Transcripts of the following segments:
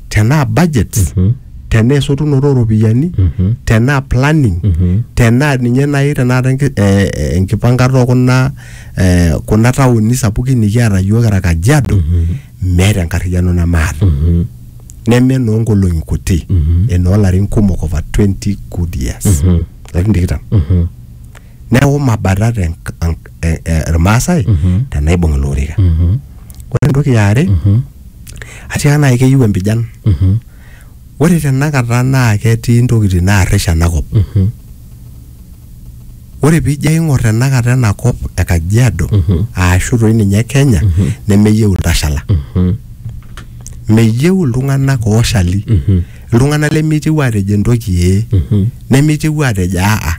tenaa budgets tenaa esotunoto ooropiyiani tenaa planning tenaa ninye naaji tenakata enki- eh, eh, enkipankata okuna eh, kuna taoni sapukin nikiata yiok kira kajiado meeta enkarriyiano nemaata neme enoonkolong'i kuti enoolarin kumok over 20 good years larin tikitam neeku mabatat en- an- e- e- irmaasai tenaibung ilo orika ore entoki yaare atiaka naaji keyieu empijan ore tenakata naa ketii intokitin naarrish enakop ore piijo aing'or tenakata ena kop e kajiado aashu toi ninye kenya nemeyieu iltashala meyieu iltung'anak ooshali iltung'anak lemeitieu aatejo entoki ee nemeitieu aatejo aa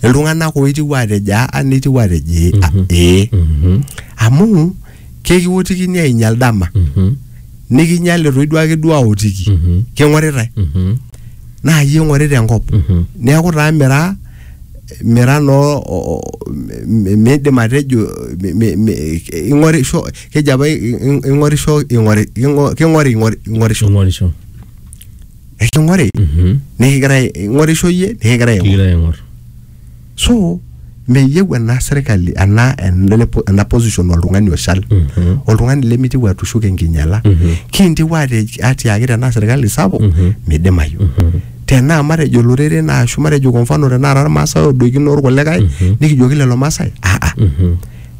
iltung'anak ooitieu aatejo aa neitieu aatejo ee a- ee amu kekiwotikini ainyal dama nikinyal etoi duake duo aotiki king'oritae naa yie ing'orita enkop neeku taa mira mira noo o- o- mi- miidim atejo mi- mi- mi- ing'orisho keji apa i- i- ing'orisho ing'ori ing'o- king'ori ing'ori- ing'orisho ing'orisho eking'ori Mhm. nikigirae ing'orisho iyie nikigirae aing'or kigira aing'or so meyieu ena serkali ena ena ena position oltung'ani oshal Mhm. oltung'ani lemitiu atushuk enkinyala Mhm. kintiu ate- atiaki tenaa serkali sapuk Mhm. midimayu Mhm. tenaa matejo olorere naa ashu matejo kwa mfano tenaa irmaasai odoikino orkulikae Mhm. nikijoki lelo maasai aa Mhm.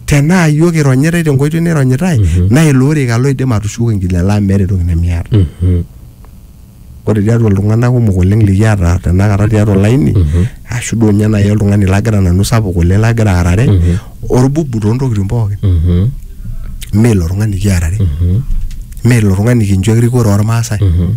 tenaa iyiook ironyitai tenkoitoi naironyitai naa ilo orika loidim atushuko enkinyala amu meeta entoki nemiata Mhm. ore tiatua iltung'anak kumok oleng likiata tenakata tiatua olaini ashu duo ninye naaji oltung'ani lagira nanu sapuk oleng lagira aarare orbubu toontokitin pookin Mhm. mee ilo tung'ani kiarare Mhm. mee ilo tung'ani kincho erikore ormaasai Mhm.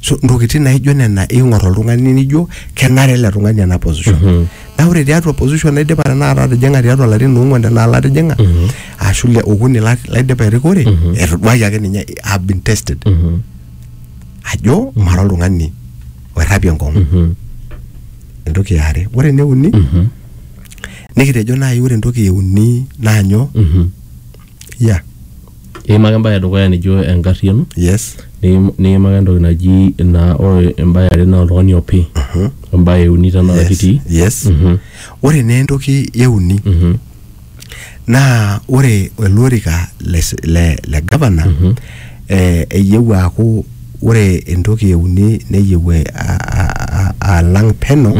so ntokitin naijo nena ing'or oltung'ani nijo kenare ele tung'ani ena position mm -hmm. na ore tiatua position naidipa tenakata atijing'a tiatua larin ong'uan tenaa latijing'a mm -hmm. ashu le okuni laidipa erikore mm -hmm. etoduaki ake ninye have been tested mm -hmm. ajo mm -hmm. mara oltung'ani oirrapie nkong'u mm -hmm. entoki eare ore eneuni mm -hmm. nikitejo naaji ore entoki euni naanyo mm -hmm. yeah iimaka embae edukuya nijo enkarriano yes niim- niimaka entoki naji naa ore embae are naa oltung'ani opi embae euni tenaa yes kitii yes ore naa entoki euni naa ore ele orika le s- le le gavana eh, eyieu aaku ore entoki euni neyieu eh, a- a- a- alang peno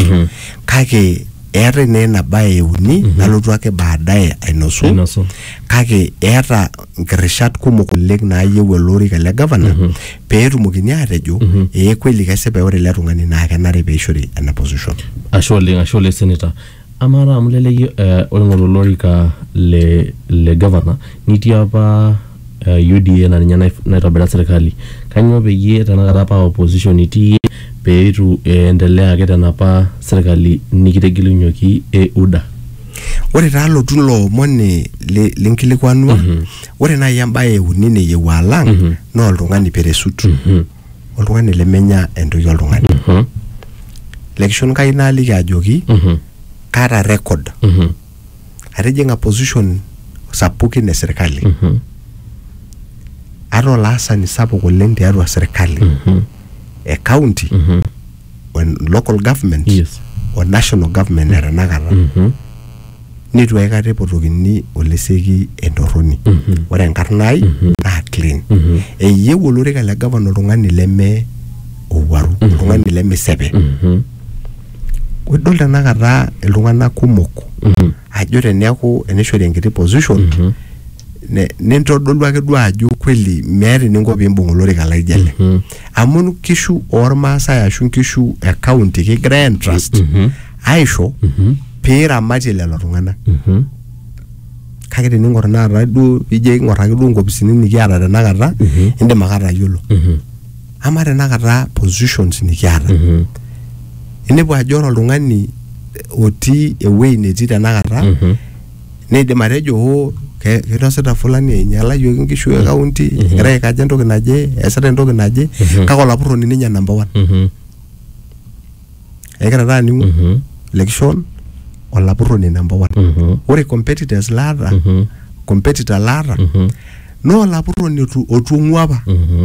kake eetae naa ina bae euni nalotu ake baadaye ainosu Ainosu. kake eeta nkirishat kumok oleng naayieu ele orika le gavana pee etumokini aatejo ee kweli kesipa ore ele tung'ani naa kenare pee eishori ena position. ashe oleng ashe oleng senator amaa taa amu leleyie eh, oing'oru olorika le le gavana nitii apa uh, UDA na ninye naif- naitobira serkali kanyoo peyie tenakata paa opposition itii iyie peitu iendelea ake tenapa serkali nikitegelunyioki e UDA ore taa alotu ilo omoni li- linkilikuanua ore naaji embaye euni neyieu alang naa oltung'ani peresut oltung'ani lemenya entoki oltung'ani lekishon kai naaliki ajoki kaata record atijing'a position sapukin e serkali Mhm. ataa olaasani sapuk oleng tiatua serkali Mhm. e county Mhm. o en- local government Yes. o national government e tenakata Mhm. neitu aikata epotokini oleseki entorroni Mhm. ore enkarna ai Mhm. naa clean Mhm. eyieu olorika le gavana oltung'ani leme owuaru oltung'ani lemesepe Mhm. idol tenakata iltung'anak kumok Mhm. ajo teneeku enishori enkiti position Mhm. ne- nintodolu ake duo ajo kweli meeta eninko piimbung olorika laijo ele Mhm. amu nkishu ormaasai ashu nkishu e county kigira entrust Mhm. aisho Mhm. piiramatie lelo tung'anak Mhm. kake tening'or tenakata duo pijo aing'or ake duo nkopisini nikiata tenakata Mhm. indim ake atayiolo Mhm. ama tenakata positions nikiata Mhm. inepu ajo ore oltung'ani otii ewuei netii tenakata Mhm. neidim atejo oo ke- kinosita fulani einyalayioki nkishu e kaunti egira aikaja entoki naje eesita entoki naje Mhm. kake olapurroni ninye number one Mhm. egira taa aning'u Mhm. lekishon olapurroni number one Mhm. ore competitors laata Mhm. competitor laata Mhm. naa olapurroni otu- otung'ua apa Mhm.